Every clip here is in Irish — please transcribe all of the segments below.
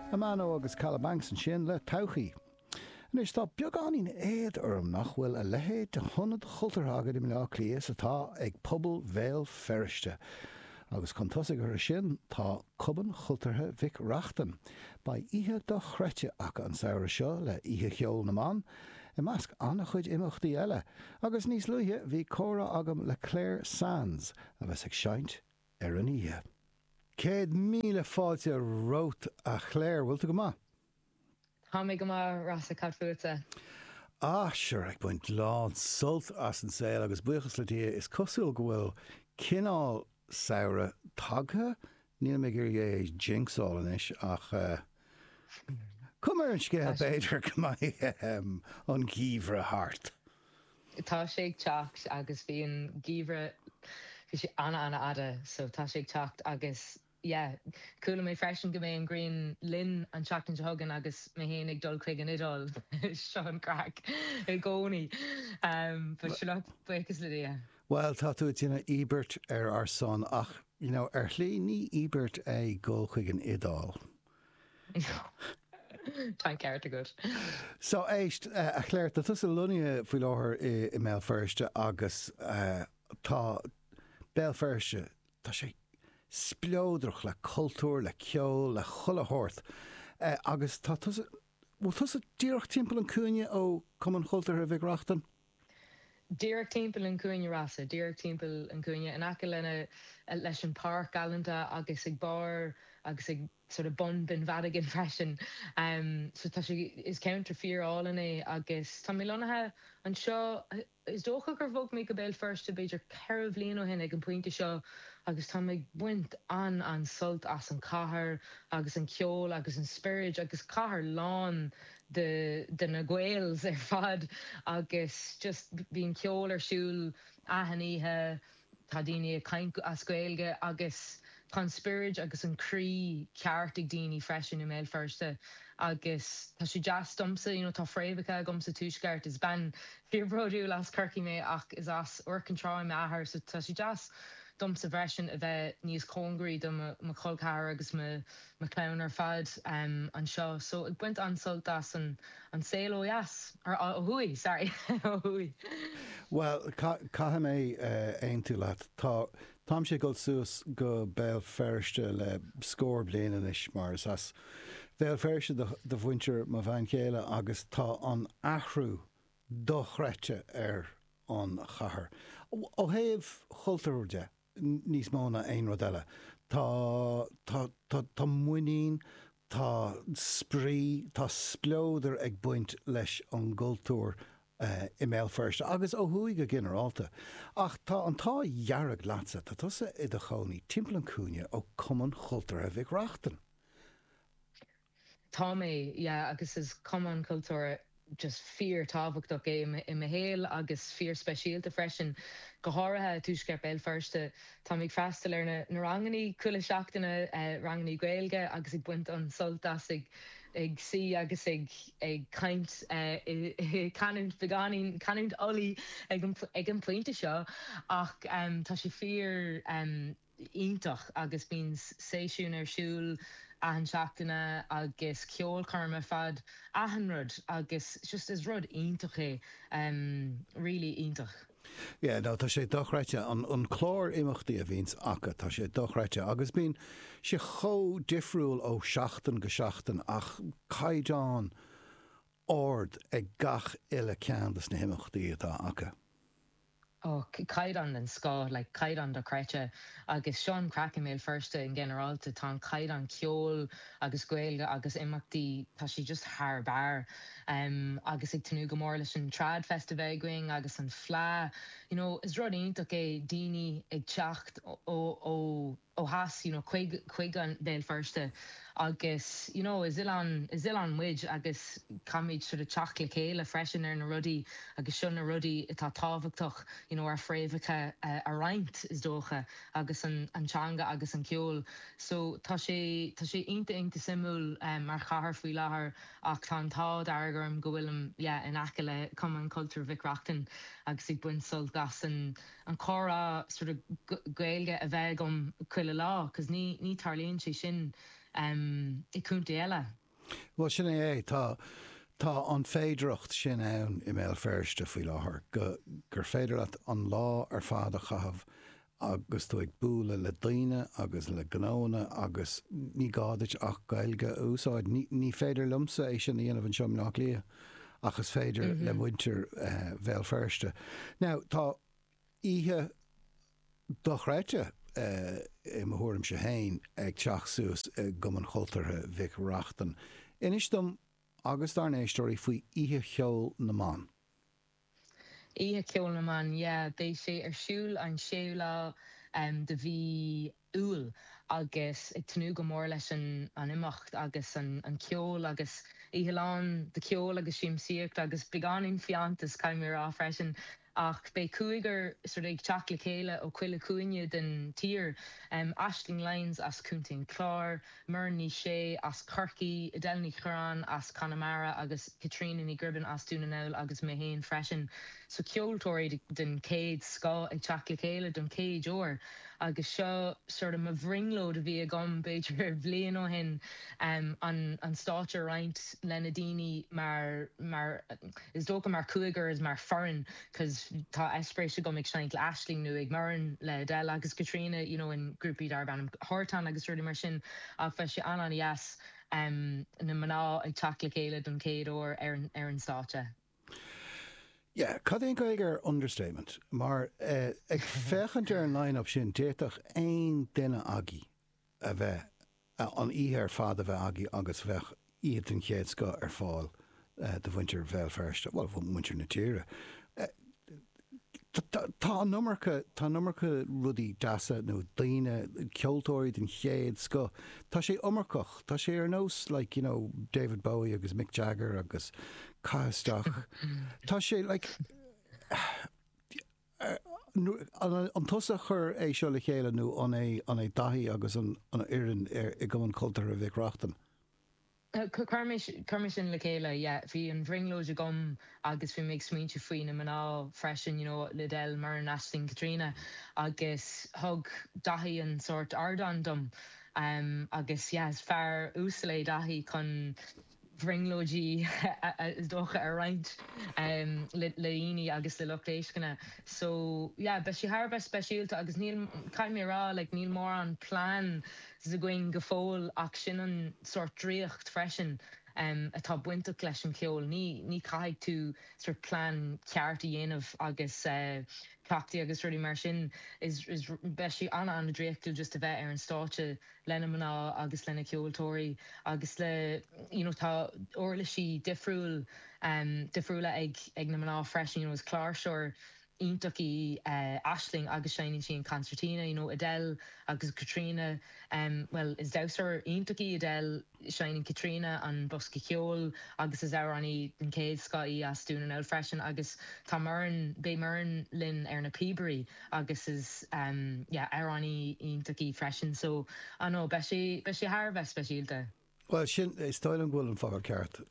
A man oh agus Caladh Banks ansin le todhchaí. Anois tá beagáinín éad orm nach bhfuil a leithéid de hionad chultúrtha againn i mBleá Cliath is atá ag pobal Bhéal Feirste. Agus chun tosaigh orthu sin tá Cumann Cultúrtha Mhic Reachtain. Beidh oíche dochreidte acu an samhradh seo le Oíche Cheoil na mBan i measc an-chuid imeachtaí eile. Agus níos luaithe bhí comhrá agam le Claire Sands a bheas ag seinnt ar an oíche. Céad míle fáilte romhat a Chléir, bhfuil tú go maith? Tá mé go maith, Rossa, cad fútsa? Ah, sure, ag baint lán sult as an saol agus buíochas le Dia, is cosúil go bhfuil cineál samhraidh tagtha, nílim ag iarraidh é a jinxáil anois ach cuma ar an scéal b'fhéidir go mbeidh an geimhreadh thart. Tá sé ag teacht agus bhí an geimhreadh, bhí sé ana ana-fhada so tá sé ag teacht agus yeah. Chuala mé freisin go mbeidh an ghrian linn an tseachtain seo chugainn agus mé féin ag dul chuig an Iodáil, seo an craic i gcónaí but sure look, buíochas le Dia. Bhuel, tá tú ag déanamh íobairt ar ár son ach, you know, ar shlí ní íobairt é dhul chuig an Iodáil. Tá an ceart agat. So éist, a Chláir, tá tusa lonnaithe faoi láthair i mBéal Feirste agus tá Béal Feirste, tá sé spleodrach le cultúr, le ceol, le chuile shórt agus tá tusa, bhfuil tusa díreach timpeall an cúinne ó Cumann Cultúrtha Mhic Reachtain? díreach timpeall an chúinne Rossa, díreach timpeall an chúinne, in aice lena, leis an páirc galanta agus ag barr agus ag sort of bun Bheann Mhadagáin freisin. So tá sé, is ceantar fíor álainn í agus tá mé lonnaithe anseo, is dócha gur bhog mé go Béal Feirste b'fhéidir ceithre bhliain ó shin ag an pointe seo agus táim ag baint an, an-sult as an chathair agus an ceol agus an spioraid agus cathair lán de na Gaels ar fad agus just bíonn ceol ar siúl achan oíche, tá daoine ag caint as Gaeilge agus tá an spiorad agus an croí ceart ag daoine freisin i mBéal Feirste agus tá sé deas domsa, you know, tá fréamhacha agam sa Tuaisceart, is bean fíorbhródúil as Corcaigh mé ach is as Iúr Cinn Trá m'athair so tá sé deas domsa freisin a bheith níos cóngaraí do mo chol ceathar agus mo mo chlann ar fad anseo so ag baint an-sult as an saol ó dheas, or ó thuaidh sorry, ó thuaidh. Bhuel, caithfidh mé aontú leat. Tá, táimse ag dul suas go Béal Feirste le scór bliain anois mar is as Béal Feirste do, do mhuintir mo bhean chéile agus tá an athrú dochreidte ar an chathair, ó thaobh chultúir de. níos mó ná aon rud eile tá tá tá tá muinín tá spraoi tá spleodar ag baint leis an gcultúr i mBéal Feirste agus ó thuaidh go ginearálta ach tá an t-ádh dhearg leatsa tá tusa i do chónaí timpeall an cúinne ó Cumann Chultúrtha Mhic Reachtain. Tá mé, yeah, agus is cumann cultúrtha just fíor-tábhachtach é i mo shaol agus fíor-speisialta freisin, go háirithe i dtuaisceart Béal Feirste. Tá mé ag freastal ar na rangannaí chuile seachtaine, rangannaí Gaeilge, agus ag baint an-sult as ag ag suí agus ag ag caint i canúint beagáinín, canúint Uladh ag an pointe seo, ach tá sé fíor. iontach agus bíonn seisiúin ar siúl achan seachtaine agus ceolchoirm ar fad achan rud agus just is rud iontach í really iontach. Yeah no tá sé dochreidte an an clár imeachtaí a bhíonns acu tá sé dochreidte agus bíonn sé chomh difriúil ó seachtain go seachtain ach caighdeán ard ag gach uile ceann de na himeachtaí atá acu. Ó, caighdeán den scoth, like caighdeán dochreidte. Agus seo an craic i mBéal Feirste in ginearálta, tá an caighdeán ceoil agus Gaeilge agus imeachtaí, tá sé just thar barr. Agus ag tnúth go mór leis an Trad Fest a bheith againn agus an Fleadh. You know, is rud iontach é daoine ag teacht ó. ó theas you know chuig chuig an Béal Feirste agus you know is oileán is oileán muid agus caithfimid sort of teacht le chéile freisin ar na rudaí agus seo na rudaí atá tábhachtach you know ár fréamhacha a roinnt is dócha agus an an teanga agus an ceol so tá sé tá sé iontach iontach suimiúil mar chathair faoi láthair ach tá an t-ádh dearg orm go bhfuilim yeah in aice le Cumann Cultúir Mhic Reachtain agus ag baint sult as an an comhrá sort of Gaeilge a bheith agam chuile lá 'cause ní ní tarlaíonn sé sin i contae eile. Bhuel sin é é, tá tá an féidireacht sin ann i mBéal Feirste faoi láthair go gur féidir leat an lá ar fad a chaitheamh agus tú ag bualadh le daoine agus le gnóanna agus ní gá duit ach Gaeilge a úsáid. Ní ní féidir liomsa é sin a dhéanamh anseo i mBleá Cliath. ach is féidir le muintir Bhéal Feirste. Now, tá oíche dochreidte, i mo thuairimse féin, ag teacht suas i gCumann Chultúrtha Mhic Reachtain. Inis dom agus dár n-éisteoirí faoi Oíche Cheoil na mBan. Oíche Cheoil na mBan yeah. Beidh sé ar siúl an séú lá de mhí Iúil agus ag tnúth go mór leis an imeacht agus an ceol agus oíche lán de cheol agus siamsaíocht agus beagáinín fiántas caithfidh mé a rá freisin ach beidh cúigear sort of ag teacht le chéile ó chuile chúinne den tír, Aisling Lyons as Contae an Chláir, Muireann Ní Shé as Corcaigh, Edel Ní Chuireáin as Conamara agus Caitríona Ní Ghribin as Dún na nGall agus mé féin freisin so ceoltóirí den chéad scoth ag teacht le chéile don chéad uair agus seo sort of mo bhrionglóid a bhí agam b'fhéidir bhliain ó shin an stáitse a roinnt le na daoine mar, mar is dócha mar cúigear is mar foireann. cos tá eispéiris agam ag seinnt le Aisling nó le Muireann le Edel agus Caitríona you know in grúpaí darb ainm Tartan agus rudaí mar sin ach beidh sé an-an-dheas em na mná ag teacht le chéile don chéad uair ar an ar an stáitse. Yeah, cad é an Gaeilge ar understatement? Mar eh ag féachaint ar an line-up sin d'fhéadfadh aon duine agaibh. a bheith, an oíche ar fad a bheith agaibh agus bheadh oíche den chéad scoth ar fáil do mhuintir Bhéal Feirste, bhuel, mhuintir na tíre. Tá an iomarca, tá an iomarca rudaí deasa nó daoine, ceoltóirí den chéad scoth, tá sé iomarcach, tá sé ar nós like, you know, David Bowie agus Mick Jagger agus caith isteach, tá sé like, An tusa a chuir é seo le chéile nó an é Daithí agus an fhoireann i gCumann Cultúrtha Mhic Reachtain? Chuir mise sin le chéile, yeah. Bhí an bhrionglóid agam agus bhí mé ag smaointiú faoi na mná freisin, you know, Edel, Muireann, Aisling, Caitríona agus thug Daithí an sórt ardán dom agus yeah, is fear uasal é Daithí chun. bhrionglóidí is dócha a roinnt le daoine agus le lucht éisteachta so yeah beidh sé thar a bheith speisialta agus níl, caithfidh mé a rá like níl mórán plans againn go fóill ach sin an sórt draíocht freisin atá bainteach leis an cheol, ní, ní chaithfidh tú sort plean ceart a dhéanamh agus cleachtaí agus rudaí mar sin is, is, beidh sé ana ana draíochtúil just a bheith ar an stáitse. le na mná agus le na ceoltóirí agus le you know tá uirlisí difriúil ehm difriúla ag ag na mná freisin you know is cláirseoir iontach í eh Aisling agus seinneann sí an concertina you know Edel agus Caitríona ehm bhuel is damhsóir iontach í Edel Seineann Caitríona an bosca ceoil agus is amhránaí den chéad scoth í as Dún na nGall freisin agus tá Muireann, beidh Muireann linn ar na píobairí agus is yeah amhránaí iontach í freisin so I know beidh sé, beidh sé thar a bheith speisialta. Bhuel sin, is dóigh liom go bhfuil an focal ceart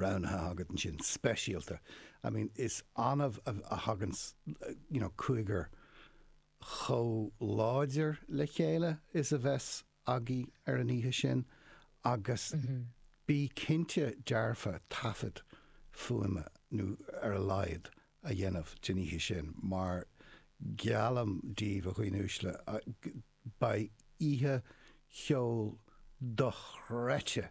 roghnaithe agat ansin, speisialta. I mean is annamh a thagann you know cúigear chomh láidir le chéile is a bheas agaibh ar an oíche sin agus bí cinnte dearfa taifead fuaime, ar a laghad, a dhéanamh den oíche sin mar geallaim díbh, a dhaoine uaisle, beidh oíche cheoil dochreidte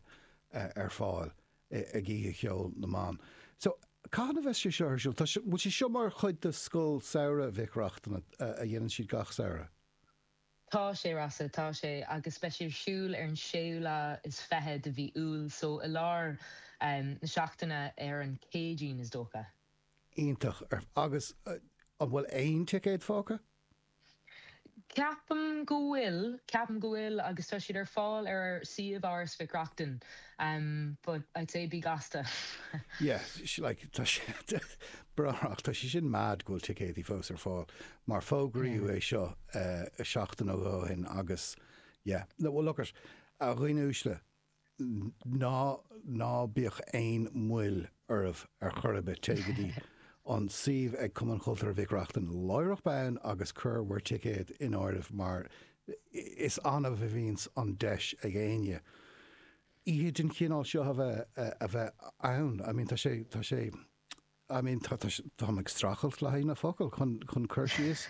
ar fáil ag Oíche Cheoil na mBan. So, cathain a bheas sé seo ar siúl? Tá, bhfuil sé seo mar chuid de Scoil Samhraidh Mhic Reachtain a dhéanann siad gach samhradh? Tá sé Rossa, tá sé, agus beidh sé ar siúl ar an séú lá is fiche de mhí Iúil, so i lár na seachtaine ar an Céadaoin is dócha. Iontach. Agus an bhfuil aon ticéad fágtha? Ceapaim go bhfuil, ceapaim go bhfuil agus tá siad ar fáil ar ár suíomh Áras Mhic Reachtain but I'd say bí gasta. Yeah, like tá sé, tá sé sin mad go bhfuil ticéadaí fós ar fáil mar fógraíodh é seo seachtain ó shoin agus yeah, no well look it, a dhaoine uaisle, ná, ná bíodh aon mhoill oraibh ar chor ar bith, téigh go dtí an suíomh ag Cumann Cultúrtha Mhic Reachtain láithreach bonn agus cuir bhur ticéad in áirithe mar is annamh a bhíonns an deis ag éinne oíche den chineál seo a bheith, a bheith ann, I mean tá sé, tá sé. I mean tá tá tá mé ag streachailt le haghaidh na focal chun chun cur síos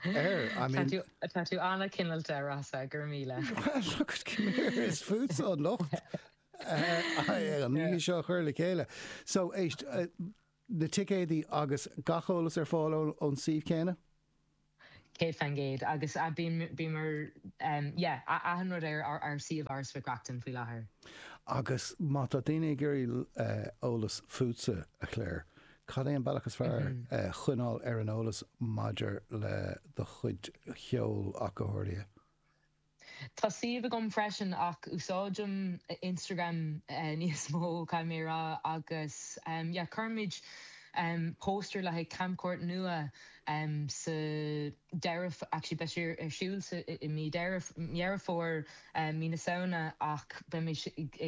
air I mean tá tú tá tú an-chineáilte, Rossa, go raibh míle. Well look at come here is fútsa atá an locht eh, eh, an Yeah. oíche seo a chur le chéile. So éist eh, na ticéadaí agus gach eolas ar fáil ón ón suíomh céanna? 100% agus yeah achan rud ar ár suíomh Áras Mhic Reachtain faoi láthair. Agus má tá daoine ag iarraidh eolas fútsa, a Clare, cad é an bealach is fearr coinneáil ar an eolas maidir le do chuid ceoil ach go háirithe? Tá suíomh agam freisin ach úsáidim Instagram níos mó caithfidh mé a rá agus yeah cuirfidh mé póstaer le haghaidh camchuairt nua sa deireadh actually beidh sé ar siúl sa i mí Deireadh Dheireadh Fómhair mí na Samhna ach beidh mé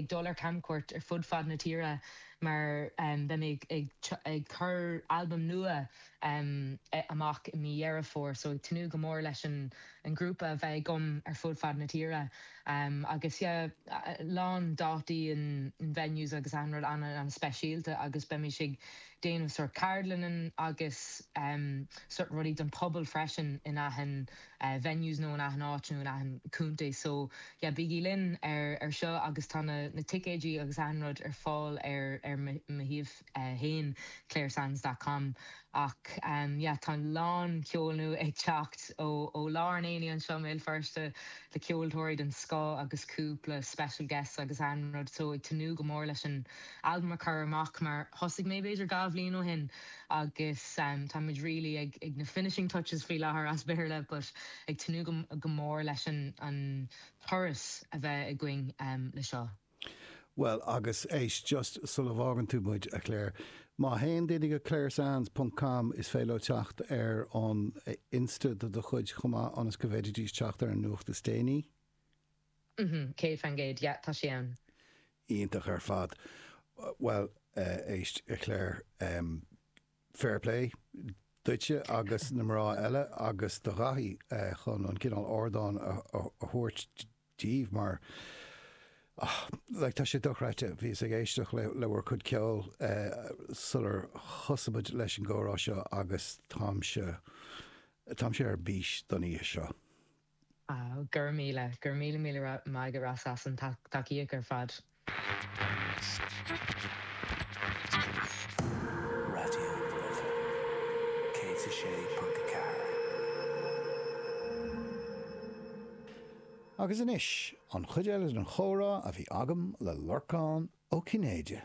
ag dul ar camchuairt ar fud fad na tíre mar beidh mé ag ag ag cur albam nua amach i mí Dheireadh Fómhair so ag tnúth go mór leis an an grúpa a bheith agam ar fud fad na tíre agus yeah a lán dátaí in venues agus achan rud ana ana speisialta agus beimid ag déanamh sort ceardlainne agus em sort rudaí don pobal freisin in achan venues nó in achan áit nó in achan contae so yeah bígí linn ar ar seo agus tá na na ticéidí agus achan rud ar fáil ar ar mo shuíomh. 1, claresands dot com Ach yeah tá a lán ceoil nua ag teacht ó ó lár an aonaigh anseo i mBéal Feirste le ceoltóirí den scoth agus cúpla special guests agus achan rud so ag tnúth go mór leis an albam a chur amach mar thosaigh mé b'fhéidir dhá bhliain ó shin agus tá muid really ag ag na finishing touches faoi láthair as Béarla but ag tnúth go go mór leis an an turas a bheith againn le seo. Bhuel, agus éist, just sula bhfágann tú muid, a Clare, má théann daoine go ClareSands ponc com is féidir leo teacht ar an Insta do do chuid chomh maith ionas go bhféididís teacht ar an nuacht is déanaí. Mm-hm, céad fan gcéad, yeah, tá sé ann. Iontach ar fad. Bhuel, éist, a Clare, fair play duitse agus na mná eile agus do Dhaithí chun an cineál ardán a thabhairt daoibh mar ach like tá sé dochreidte bhíos ag éisteacht le le bhur cuid ceoil sular thosaigh muid leis an gcomhrá seo agus táimse táimse ar bís don oíche seo. Go raibh míle, go raibh míle míle maith agat Ross as an tacaíocht ar fad. Agus anois, an chuid eile den chomhrá a bhí agam le Lorcán Ó Cinnéide.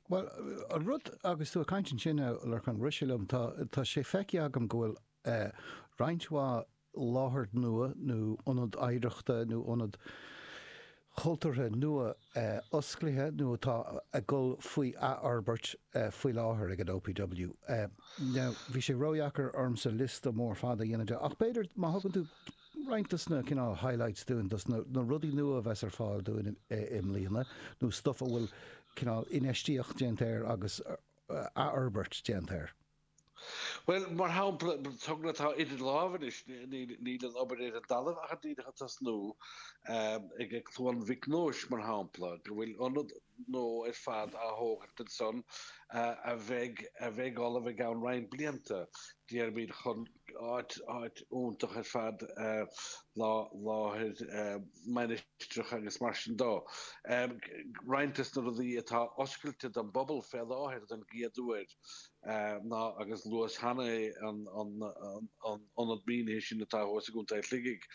Bhuel, an rud agus tú ag caint ansin, a Lorcáin, rith sé liom, tá tá sé feicthe agam go bhfuil roinnt mhaith láthair nua nó ionad oidhreachta nó ionad cultúrtha nua osclaithe nó atá ag dul faoi athfhorbairt faoi láthair ag an OPW. Now, bhí sé ródheacair ormsa liosta mór fada a dhéanamh de, ach b'fhéidir má thugann tú roinnt dos na cineál highlights dúinn, dos na rudaí nua a bheas ar fáil dúinn i mbliana nó stuff a bhfuil cineál infheistíocht déanta air agus athfhorbairt déanta air. Bhuel, mar shampla, togra atá idir lámha anois, níl an obair ar an dtalamh ach díreach ag tosnú, ag ag Cluain Mhic Nóis mar shampla, go bhfuil ionad nua ar fad á thógaint ansan a bheidh a bheidh ullamh i gceann roinnt blianta, déarfaimid, chun áit iontach ar fad láthair mainistreach agus mar sin de. Roinnt des na rudaí atá oscailte don bpobal fé láthair don gcéad uair, ná agus luas cheana an ionad mínithe sin atá thuas i gContae Shligigh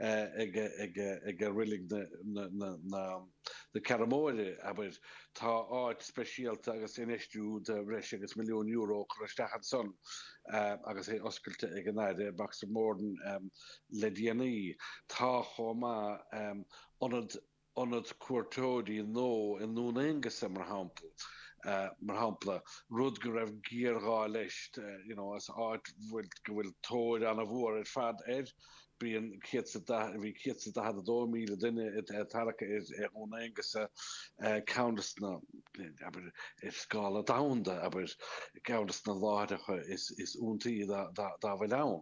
ag reilig na Ceathrún Móire, abair. Tá áit speisialta agus infheistiú de bhreis agus milliún euro curtha isteach ansan agus é oscailte ag an Aire Boxer Moran le déanaí. Tá chomh maith ionad ionad cuairteoirí nua i nDún Aonghasa mar shamp mar shampla rud go raibh géar ghá leis you know an áit go bhfuil go bhfuil tóir ana mhór ar fad air bíonn céad is da bhí céad is daichead a dó míle duine ag tarrac ar Dhún Aonghasa ceann des na abair ar scála domhanda abair ceann des na láithreacha is is iontaí dá bhfuil ann.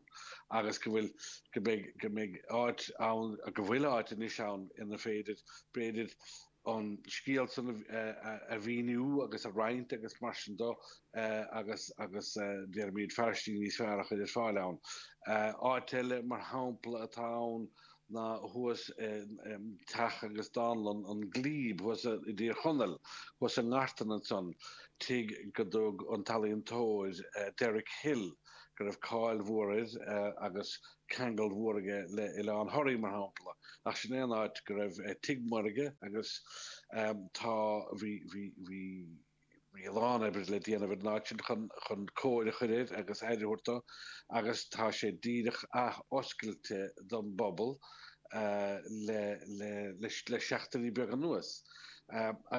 agus go bhfuil, go mbeidh, go mbeidh áit ann, go bhfuil áit anois ann inar féidir, b'fhéidir, an scéal san a mhíniú agus a roinnt agus mar sin de, agus, agus déarfaimid fairistí níos fearr a chur ar fáil ann. Áit eile, mar shampla, atá ann ná thuas i dteach agus dánlann an Glebe thuas i dTír Chonaill, thuas i nGartan ansan, tigh go dtug an t-ealaíontóir Derek Hill, go raibh cáil mhór air agus ceangal mhór aige le Oileán Thoraí mar shampla, ach sin é an áit go raibh tigh mór aige agus tá bhí bhí bhí bhí a lán oibre le déanamh ar an áit sin chun chun cóir a chur air agus aire a thabhairt dó agus tá sé díreach ath-oscailte don bpobal le le le seachtaine beaga anuas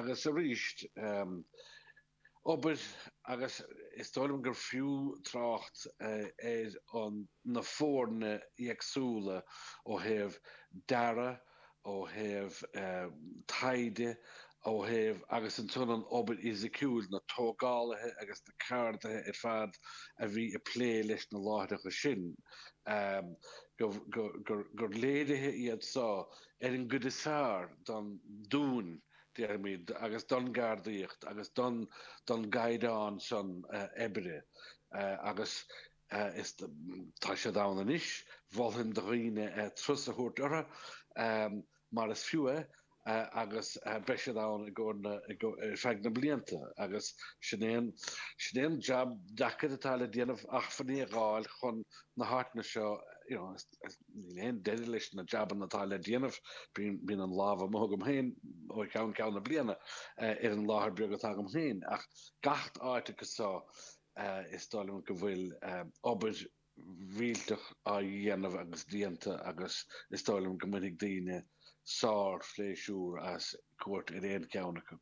agus arís obair agus is dóigh liom gur fiú trácht ar an na foirne éagsúla ó thaobh dearadh, ó thaobh taighde, ó thaobh agus ansan an obair fhisiciúil, na tógálaithe agus na ceardaithe ar fad a bhí ag plé leis na láithreacha sin gur léiriú iad seo ar an gcuid is fearr don dúil. déarfaimid, agus don gceardaíocht agus don don gcaighdeán san oibre agus is tá siad ann anois. Mholfainn do dhaoine turas a thabhairt orthu mar is fiú é agus beidh siad ann i gcomhair na i go ar feadh na blianta agus sin é an sin é an jab deacair atá le déanamh acmhainní a dh'fháil chun na háiteanna seo you know Níl aon deireadh leis na jabanna atá le déanamh. Bíonn an lámh amuigh agam féin ó cheann ceann na bliana ar an láthair beag atá agam féin, ach gach áit acu so is dóigh liom go bhfuil obair mhíorúilteach á dhéanamh agus déanta agus is dóigh liom go mbainfidh daoine sár-phléisiúr as cuairt ar aon cheann acu.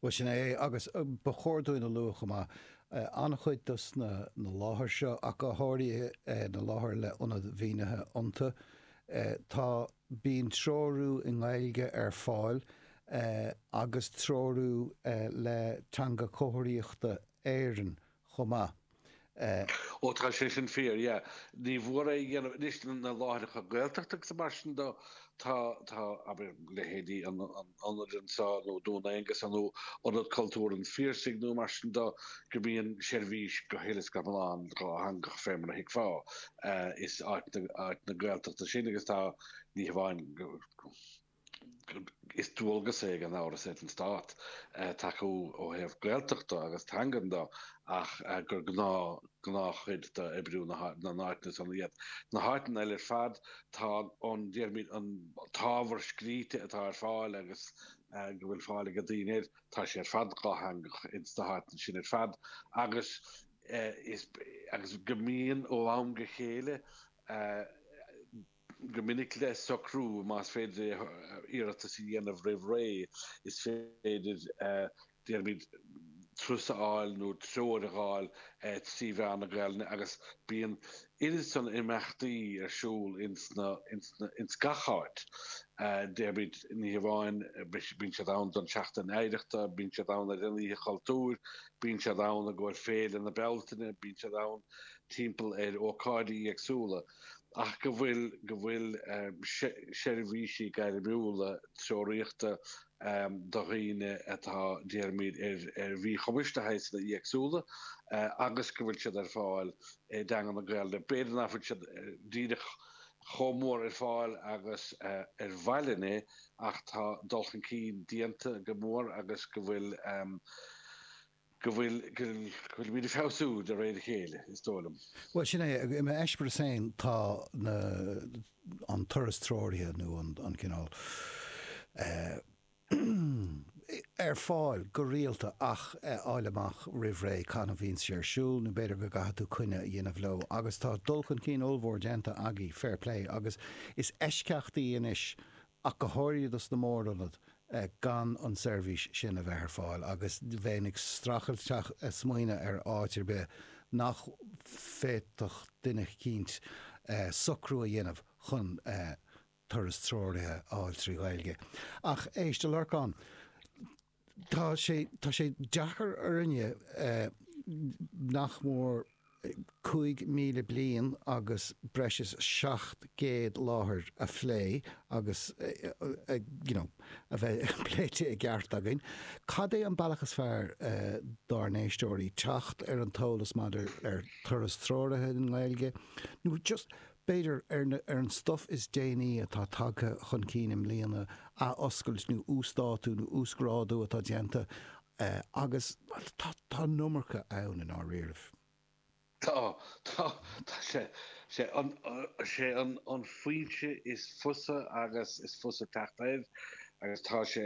Bhuel, sin é é, agus ba chóir dúinn a lua chomh maith, an-chuid dos na láithreacha seo, ach go háirithe na láithreacha le ionad mínithe iontu, tá, bíonn treorú i nGaeilge ar fáil agus treorú le Teanga Chomharthaíochta Éireann chomh maith. Ó tá sé sin fíor, yeah. Ní nach ionadh anois na láithreacha Gaeltachta agus mar sin de, tá, tá, abair, leithéidí an ionaid anseo nó Dún Aonghasa nó Ionad Cultúir an Phiarsaigh nó mar sin de go mbíonn seirbhís go huile is go hiomlán dhátheangach fé mar a thuigfeá. Is áiteanna Gaeltachta san agus tá, ní hamháin go. Is dualgas é gan amhras ar an Stát tacú ó thaobh Gaeltachta agus teangan de ach gur gnáth, gnáthchuid d'oibriú na n-áiteanna san é. Sna háiteanna eile ar fad tá an, déarfaimid, an t-ábhar scríte atá ar fáil agus go bhfuil fáil ag daoine air, tá sé ar fad dhátheangach ins na háiteanna sin ar fad agus is, agus go mbíonn ó am go chéile, go minic le socrú, más féidir é iarratas a dhéanamh roimh ré, is féidir, déarfaimid, turas a fháil nó treoir a fháil trí mheán na Gaelainne agus bíonn oiread san imeachtaí ar siúl ins gach áit. Déarfaimid, ní hamháin, bíonn siad ann don tseachtain oidhreachta, bíonn siad ann ar an oíche chultúir, bíonn siad ann i gcomhair féile na Bealtaine, bíonn siad ann timpeall ar ócáidí éagsúla. ach go bhfuil go bhfuil seirbhísí gairmiúla treoraíochta do dhaoine atá, déarfaimid, ar mhíchumais de shaghsanna éagsúla agus go bhfuil siad ar fáil i dteanga na Gaeilge. B'fhéidir nach bhfuil siad díreach chomh mór ar fáil agus ba mhaith linn é ach tá dul chun cinn déanta go mór agus go bhfuil, go bhfuilimid ag feabhsú de réir a chéile, is dóigh liom. Bhuel, sin é. I m'eispéireas féin, tá an turas treoraithe, nó an cineál, ar fáil go rialta ach fháil amach roimh ré cathain a bhíonn sé ar siúl, nó b'fhéidir go gcaithfidh tú coinne a dhéanamh leo. Agus tá dul chun cinn ollmhór déanta agaibh, fair play, agus is eisceachtaí anois ach go háirithe dos na mórionaid, gan an tseirbhís sin a bheith ar fáil agus bheinn ag streachailt smaoineadh ar áit ar bith nach bhféadfadh duine eicínt socrú a dhéanamh chun turas treoraithe a fháil trí Ghaeilge. Ach éist, a Lorcáin. Tá sé tá sé deacair orainne nach mór 5,000 bliain agus breis is 700 láthair a phlé agus you know a bheith pléite i gceart againn. Cad é an bealach is fearr dár n-éisteoirí teacht ar an t-eolas maidir ar Turas Treoraithe i nGaeilge nó just B'fhéidir, ar an stuif is déanaí atá tagtha chun cinn i mbliana, athoscailt nó uasdátú nó uasghrádú atá déanta agus tá an iomarca ann i ndáiríribh. Tá, tá, tá sé, sé an, an foinse is fusa agus is fusa teacht air agus tá sé,